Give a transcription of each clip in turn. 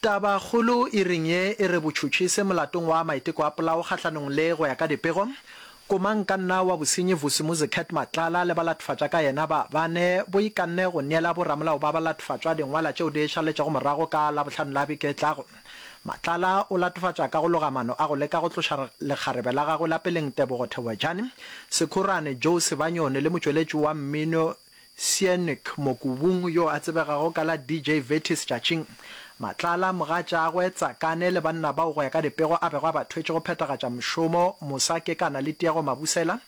Tabakgolo e reng ye e re botšhotšhise molatong wa maiteko a polao kgahlanong le go ya ka dipego? Komankanna wa bosenyi Vusi Muzi Cat Matlala le balathofatša ka yena ba bane bo ikanne go neela bo ramolao ba balathofatšwa dingwala tšeo di šaletšego morago ka Labohlano la beke e tlago. Matlala o latofatša ka go loga mano a go leka go tloša lekgarebe la gagwe la peleng Tebogo Theboejane Sekhorane, Joe Sebanyoni le motšweletši wa mmino Sienik Mokubung yo a tsebegago ka la DJ Vetis Tšatšing Matlala, mogatšaagwe Tsakane le banna bao go ya ka dipego a bego a ba thwetše go phethagatša mošomo mosa ke kana le Tiego Mabusela,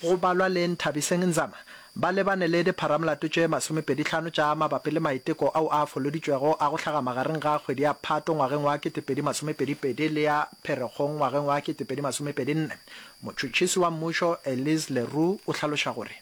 go balwa le Nthabiseng Nzama, ba lebane le dipharamolato tše masomepedi tlhano tša mabapi le maiteko ao a foloditšwego a go hlaga magareng ga kgwedi ya Phato ngwageng wa ketepedi masomepedi pedi le ya Pherekgong ngwageng wa ketepedi masomepedi nne. Motšhotšhisi wa mmušo Elise le Roux o hlaloša gore.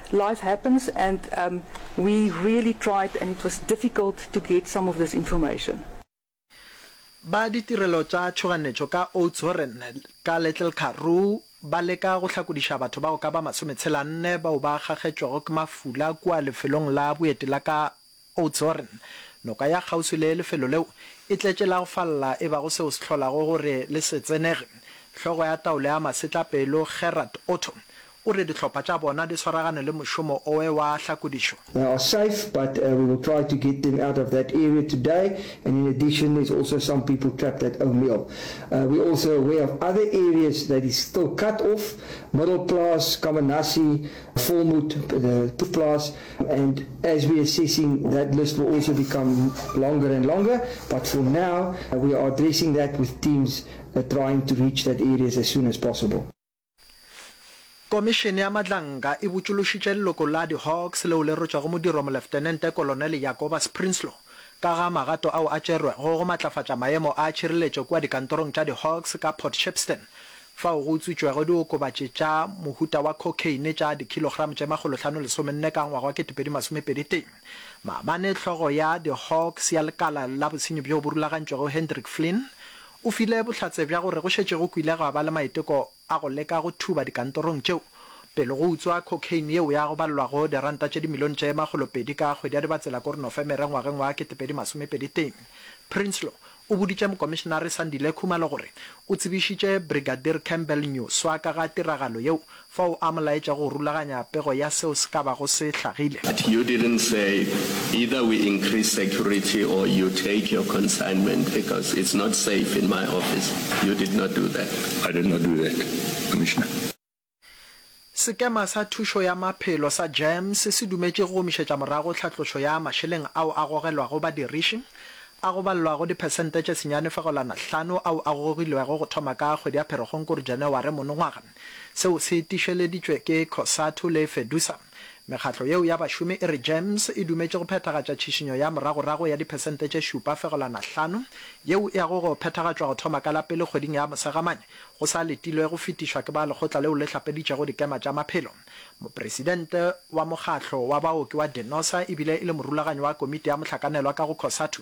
Life happens and um we really tried and it was difficult to get some of this information. Ba ditirelo tša tšhoganetšo ka Oudtshoorn ka Little Karoo ba leka go hlakodiša batho bao ka ba masome tshela nne bao ba kgakgetšwego ke mafula kua lefelong la boeti la ka Oudtshoorn, noka ya kgauswi le lefelo leo, e tletše la go falla e bago seo se hlolago gore le se tsenege. Hlogo ya taolo ya masetlapelo Gerard Otto o re dihlopha tša bona di swaragane le mošomo oe wa hlakodišo. They are safe but we will try to get them out of that area today and in addition there's also some people trapped at O'Meal. We're also aware of other areas that is still cut off, Middelplaas, Kammanassie, Volmoed, the Klipplaas. And as we assessing that list will also become longer and longer, but for now we are addressing that with teams trying to reach that areas as soon as possible. Komišene ya Madlanka e botšološitše leloko la di-Hawks leo le rwetšwego modiro Moleftenente Kolonele Jacobus Prinsloo ka ga magato ao a tšerwego go matlafatša maemo a tšhireletšo kua dikantorong tša di-Hawks ka Port Shepstone fao go utswitšwego diokobatši tša mohuta wa cocaine tša dikilogramo tše makgolohlano lesomenne ka ngwaga wa ketepedi masomepedi tee. Maabane hlogo ya di Hawks ya lekala la bosenyi bjo bo rulagantšwego Hendrik Flynn o file bohlatse bja gore go šetše go kwile gwa ba le maiteko a go leka go thuba dikantorong tšeo pele go utswa cocaine yeo ya go balelwago diranta tše dimilione tše makgolopedi ka kgwedi ya Dibatsela-Kornofemere ngwageng wa ketepedi masomepedi tee. Prinsloo O boditše Mokomišenare Sandile Khumalo gore o tsebišitše Brigadier Campbell Nyuswa ka ga tiragalo yeo fao a mo laetša go rulaganya pego ya seo se ka bago se hlagile. But you didn't say either we increase security or you take your consignment because it's not safe in my office. You did not do that. I did not do that, Commissioner. Sekema sa Thušo ya Maphelo sa GEMS se dumetše go gomišetša morago tlhatlošo ya mašeleng ao a gogelwago badiriši, a go balelwago diphesente tše senyane fegolwana hlano ao a gogilwego go thoma ka kgwedi ya Pherekgong kore Janaware monongwaga. Seo se tišeleditšwe ke Cosatu le Fedusa. Mekgatlo yeo ya bašomi e re Gems e dumetše go phethagatša tšhišinyo ya moragorago ya diphesente tše šupa fegelwana hlano yeo e yago go phethagatšwa go thoma ka la pele kgweding ya Mosegamane go sa letilwe go fetišwa ke ba lekgotla leo le hlapeditšego dikema tša maphelo. Mopresidente wa mokgatlo wa baoki wa Denosa e bile e le morulaganyi wa komiti ya mohlakanelwa ka go Cosatu,